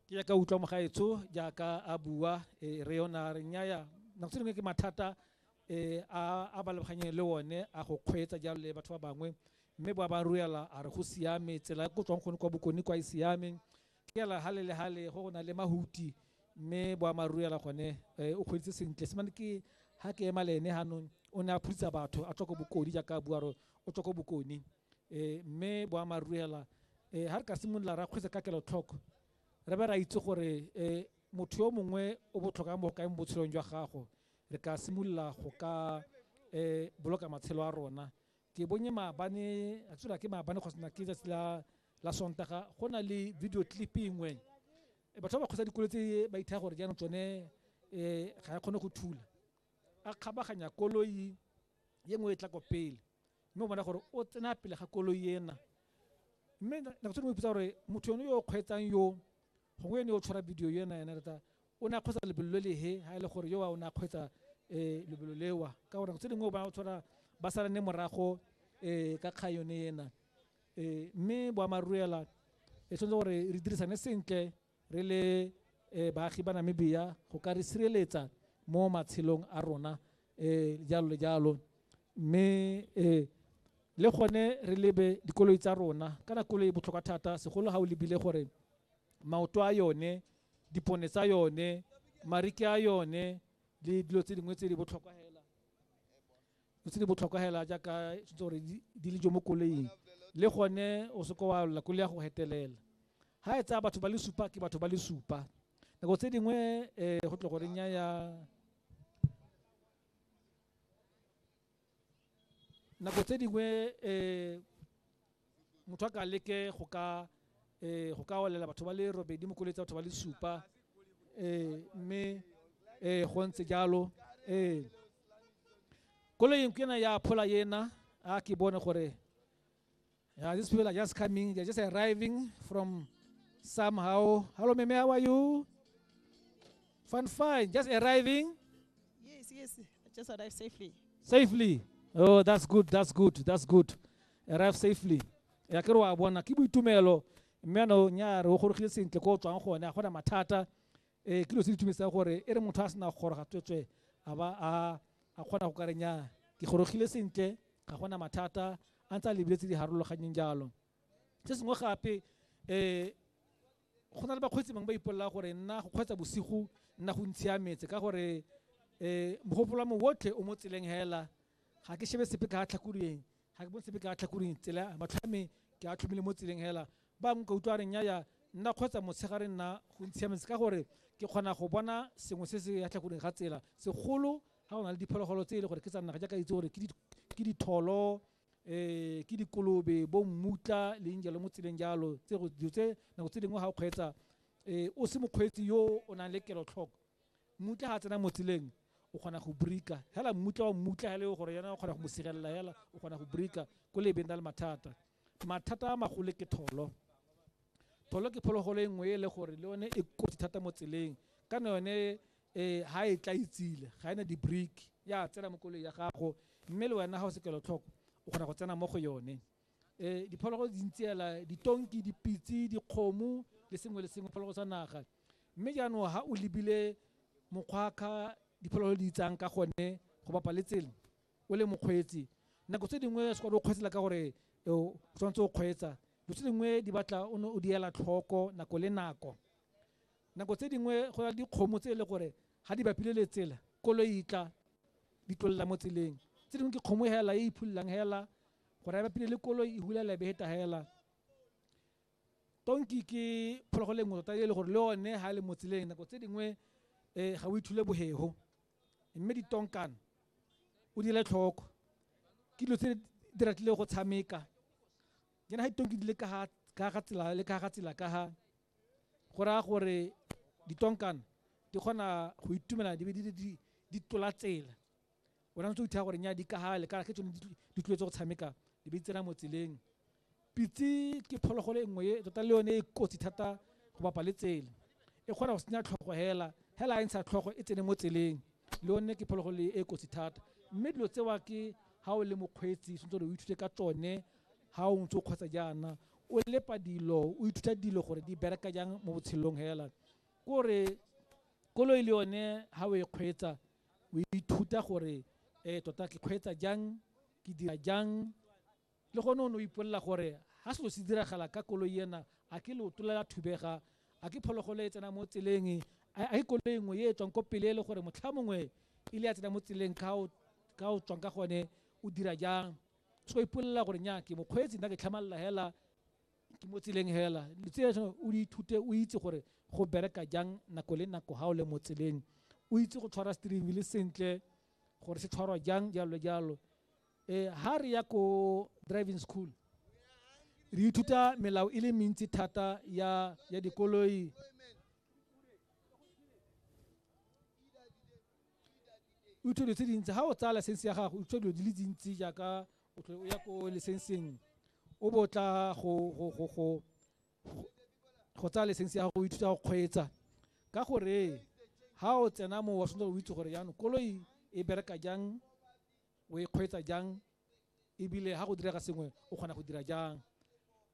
ke jaaka utlwa mogaetsho jaaka a bua eh, re yona re nyaya nako tse dingwe ke mathata eh, a a ba lebaganyeng le one a go kgweetsa jalo le batho ba bangwe mme ba ba ruela a re go siame tsela e ko tswang gone kwa bokone kwa e siame ke yala hale le hale go go na le mahuti mme boammaaruri yala gone eh, o kgweeditse sentle semane ke ha ke ema le ene hanong o ne a phutsa batho a tswa ko bokone jaaka a bua re o tswa ko bokone um mme boammaaruri hela um ga re ka simolola ra kgwetsa ka kelotlhoko re be ra itse gore um motho yo mongwe o botlhokwa mo go kae mo botshelong jwa gago re ka simolola go ka um boloka matshelo a rona ke bonye maabane a tsela ke maabane kgosana ke tsatsi la la sontaga go na le video clip engwe batho ba ba kgotsa dikolo tse ba ithaya gore jaanong tsone um ga ya kgone go thula a kgabaganya koloi ye nngwe e tla ko pele mme o bona gore o tsena pele ga koloi ena mme nako tse dingwe ipotsa gore motho yone yo o kgweetsang yo gongwe ene o tshwara video yo ena ena rata o ne a kgweetsa lebelo le lehe ga e le gore yo o ne a kgweetsa um lebelo lewa ka gore nako tse dingwe o bona o tshwara ba salane morago um ka kgang yone ena um mme boamaruela e tshwanetse gore re dirisane sentle Re le baagi ba Namibia go ka re sireletsa mo matshelong a rona jalo le jalo. Mme le gone re lebe dikoloi tsa rona kana koloi e botlhokwa thata segolo ga o lebile gore maoto a yone, dipone tsa yone, mariki a yone le dilo tse dingwe tse di botlhokwa fela. tse di botlhokwa hela jaaka tshwanetse gore di le jo mo koleing le gone o seke wa lla koloi ya go hetelela ga e tsaya batho ba le supa ke batho ba le supa nako tse dingwe um go tle gore nya ya nako tse dingwe um motho a ka leke go ka eh, go ka olela batho ba le robedi mo koloi tsa batho ba le supa eh, mme eh, go ntse jalo eh. koloing ke ena ya phola ena a ke bone gore yeah, these people are just coming they're just arriving from somehow hello meme how are you fine fine just arriving Yes, yes. I just arrived safely. safely oh that's good that's good that's good arrive safely ya ke re wa bona ke boitumelo mme ano nya re o gorogile sentle ko o tswang gone a gona mathata um ke lo se ditumedisa gore e re motho a sena go goroga tswetswe a ba a a kgona go ka re nya ke gorogile sentle ga gona mathata a ntse a lebile tse di harologanyeng jalo se sengwe gape um go na le bakgweetsi bangwe ba ipolelela gore nna go kgweetsa bosigo nna go ntshiametse ka gore um mogopolo wa me otlhe o mo tseleng hela ga ke shebe sepe ka tlhakoleng ga ke bone sepe ka tlhakuring tsela matlho a me ke a tlhomile mo tseleng hela ba nka utlwa reng yaya nna kgotsa motshegare nna go ntshiametse ka gore ke kgona go bona sengwe se se ya tlhakuring ga tsela segolo ga go na le diphologolo tse e le gore ke tsa naga jaaka itse gore ke ditholo um ke dikolobe bo mmutla leng jalo mo tseleng jalo tse dilo tse nako tse dingwe ga o kgweetsa um o se mokgweetsi yo o nang le kelotlhoko Mmutla ga tsena mo tseleng o kgona go brika hela mmutla wa mmutla hela e gore yana o kgona go mo sirelela hela o kgona go brika ko le benda le mathata mathata a magolo ke tholo tholo ke phologolo e nngwe e le gore le yone e kotsi thata mo tseleng ka ne yone um ha e tla itsile ga ena di-break ya tsena mo koloi ya gago mme le wena ga o se kelotlhoko o kgona go tsena mo go yone eh diphologolo di ntse ela ditonki dipitse dikgomo le sengwe le sengwe phologolo sa naga mme jaanong ha o lebile mokgwakga diphologolo di itsang ka gone go bapa le tsela o le mokgweetsi nako tse dingwe se kwa o kgweetsela ka gore o tshwanetse o kgweetsa dilo tse dingwe di batla o ne o di ela tlhoko nako le nako nako tse dingwe go na le dikgomo tse e le gore ga di bapile le tsela koloi e tla di tlolela mo tseleng tse dingwe ke kgomo hela e iphololang hela go raya ba pele le koloi e hula lebe heta hela tonki ke phologolo e nngwe tota e le gore le one ga le mo tseleng nako tse dingwe um ga o ithule bohego mme ditonkan o dire tlhoko ke dilo tse di ratile go tshameka jana ga ditonki di le ka ga tsela le ka ga tsela ka ga go raya gore ditonkan di kgona go itumela di be di tola tsela o rantse o ithaa gore nya di ka gale ka ke tsone di tlwetse go tshameka di be di tsena mo tseleng pitse ke phologolo e nngwe e tota le yone e kotsi thata go bapa le tsela e kgona go senya tlhogo hela hela a e ntsha tlhogo e tsene mo tseleng le yone ke phologolo e e kotsi thata mme dilo tsewa ke ga o le mokgweetsi sentse o ithute ka tsone ga o ntse o kgotsa jaana o lepa dilo o ithuta dilo gore di bereka jang mo botshelong hela kore koloi le yone ga o e kgweetsa o ithuta gore ee tota ke kgweetsa jang, ke dira jang. Le gone o ne o ipolelela gore ga selo se diragala ka koloi ena a ke leoto le la thubega, a ke phologolo e tsena mo tseleng, a ke koloi nngwe e e tswang ko pele e le gore motlha mongwe e le ya tsena mo tseleng ka o tswang ka gone o dira jang. So o ipolelela gore nya ke mokgweetsi nna ke tlhamalala hela. ke mo tseleng hela tse o di ithute o itse gore go bereka jang nako le nako ga o le mo tseleng o itse go tshwara steering wheel sentle gore se tshwarwa jang jalo le jalo eh ha re ya ko driving school re ithuta melao e le mentsi thata ya ya dikoloi o dilo tse dintsi ga o tsaya license ya gago o utlwa dilo di le dintsi jaaka o tlhole o ya ko licenseng o bo tla go tsaya license ya gago o ithuta go kgweetsa ka gore ga o tsena mo wa tshwanetse go itse gore jaanong koloi e bereka jang o e kgweetsa jang ebile ga go direga sengwe o kgona go dira jang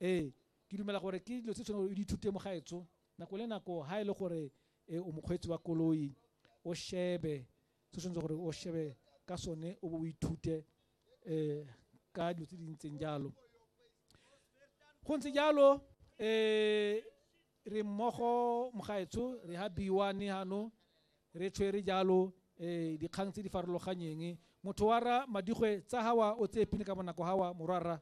ee ke dumela gore ke dilo tse tshwanetse o di ithute mo gaetso nako le nako ga e le gore e o mokgweetsi wa koloi o shebe se o tshwanetse gore o shebe ka sone o bo o ithute um ka dilo tse di ntseng jalo go ntse jalo um re mmogo mogaetsho re ha biwane gano re tshwere jalo um dikgang tse di farologanyeng motho wa ra madigwe tsa gawa o tseye pine ka bonako gawa morwarra